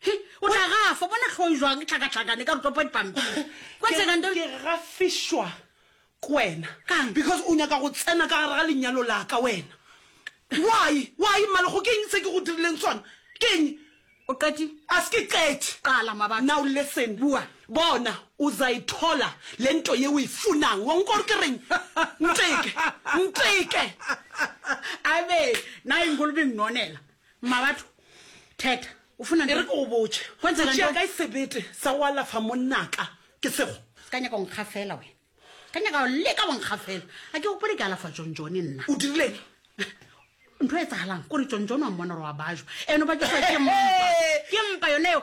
He, o tla gafa bona tlhoi jwang ke tlhakatlhakane ka rutopa dipampiri kwa Ke- tsegando ke gafišwa ke wena Kang? because o nyaka go tsena ka gare ga lenyalo laka wena why why mmalego ke eng se ke go dirileng sona ke eng o qeti a se ke qete qala mabatho now listen Bua. bona uzayithola le nto ye uyifunang wa nkwa gore ke reng nteke nteke abe na ingolobe ngnonela Mmabatho, Theta, o funa nteng? E re ke go botše, o tšea kae sebete sa go alafa monnaka? Ke sego. Se ka nyaka o nkga fela wena. Se ka nyaka o leka go nkga fela. A ke gopole ke alafa John John nna. O dirileng? Ntho e tsagalang kore John John wa mmona gore wa bajwa. Eno ba ke mpa. Ke mpa yone eo.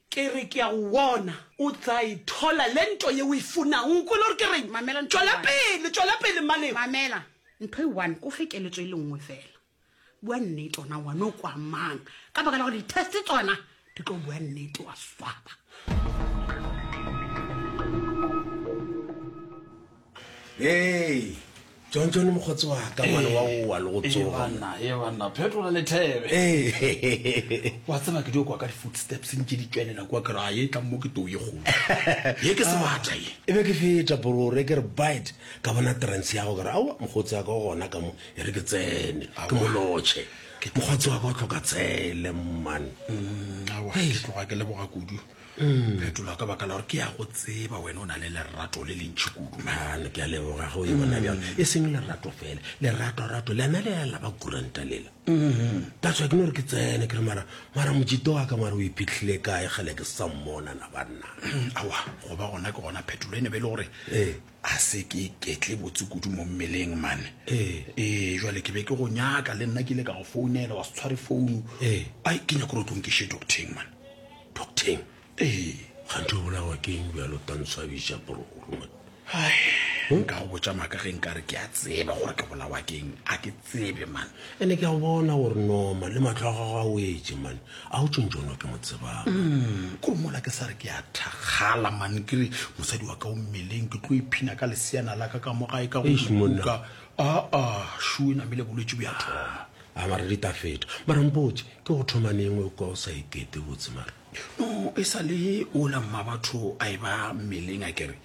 Ke re ke a go bona. O tla e thola le nto ye o e funago. O kwele gore ke reng? Mamela ntho e Tšwela one. pele, tšwela pele, Mmaleo. Mamela ntho e one, ke o fe keletso e le nngwe fela. Bua nnete ona ngwana o kwa mang? Ka baka la gore di-test tsona di tlo bua nnete, wa swaba. Ee, John John mokgotsi wa ka ngwana wa o wa le go tsoga. Ebanna, ebanna, phetola lethebe. Ee. Wa tseba ke dio kwa ka di-footsteps ntše di tšwelela kwa kere a ye tlang mo ke too ye kgolo. Ye ke sebata ye. E be ke feta borore ke re bite ka bona trance ya go ke re aowa mokgotsi wa ka o gona ka mo e re ke tsene ke mo lotšhe. Mokgotsi wa ka o tlhoka tsele mman. Aowa ke tloga ke leboga kudu. mm. phetola ka baka la gore ke ya go tseba wena o na le lerato le lentšhi kudu mane ke a leboga go yona bjang mm. e seng lerato fela leratorato lena le ya laba kuranta lela mm-hmm. that's wa ke no re ke tsene ke re mara mara mojito wa ka mare o iphitlhile kae gale ke sa mmona na banna mm, awa go ba gona ke gona phetolo e ne be e le gore ee a se ke ketle botse kudu mo mmeleng mane ee jale ke be ke go nyaka le nna ke ile ka go founela wa se tshware founu ai ke nyako gore tlo nkešhe docteng mane docteng ee gante o bolawa keng bjalo tantswabisa bororo nka go botsa maaka ge nka re ke a tseba gore ke bolawa keng a ke tsebe man ene ke a go bona gore noma le matlo a gago a wetse man a o tšontšono ke mo tsebang mm, kore mola ke sa re ke a thakgala man ke re mosadi wa ka o mmeleng ke tlo iphina ka leseana la ka ka mo gae ka goka aa shu e namele bolwetse bo ya thoma a mara di ta feta mara mpotse ke go thoma nengwe o ka o sa ikete botse mara no e sa le ola mma batho a e ba mmeleng a kere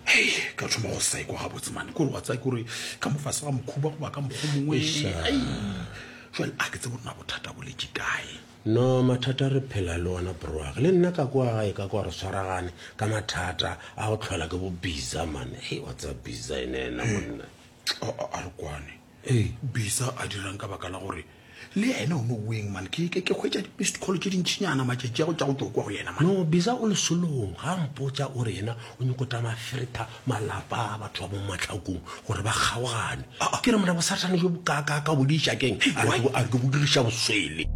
hei ka thoma go sa ikwa gabotse mane kore wa tsaya kore ka mofase ga mokhuba goba ka mokgwa mongwe ai jale a ke tse borena bothata boletse kae no mathata re phela le ona broag le nna ka kwa gae ka kwa re tshwaragane ka mathata a go tlhola ke bo biza mane hei wa tsaya biza ene ena monna a re kwane Ee. Bisa a dirang ka baka la gore le ene o no weng man ke ke ke hwetša di-missed call tše dintšhinyana matšatši a go tša go tšokwa go yena man. No Bisa o lesolong ga a mpotša o re yena o nyoko tša mafirita malapa a batho ba mo matlhakong gore ba kgaogane. Ke re mna bosathane jo bokaakaaka bo di išakeng a re ke bo diriša boswele.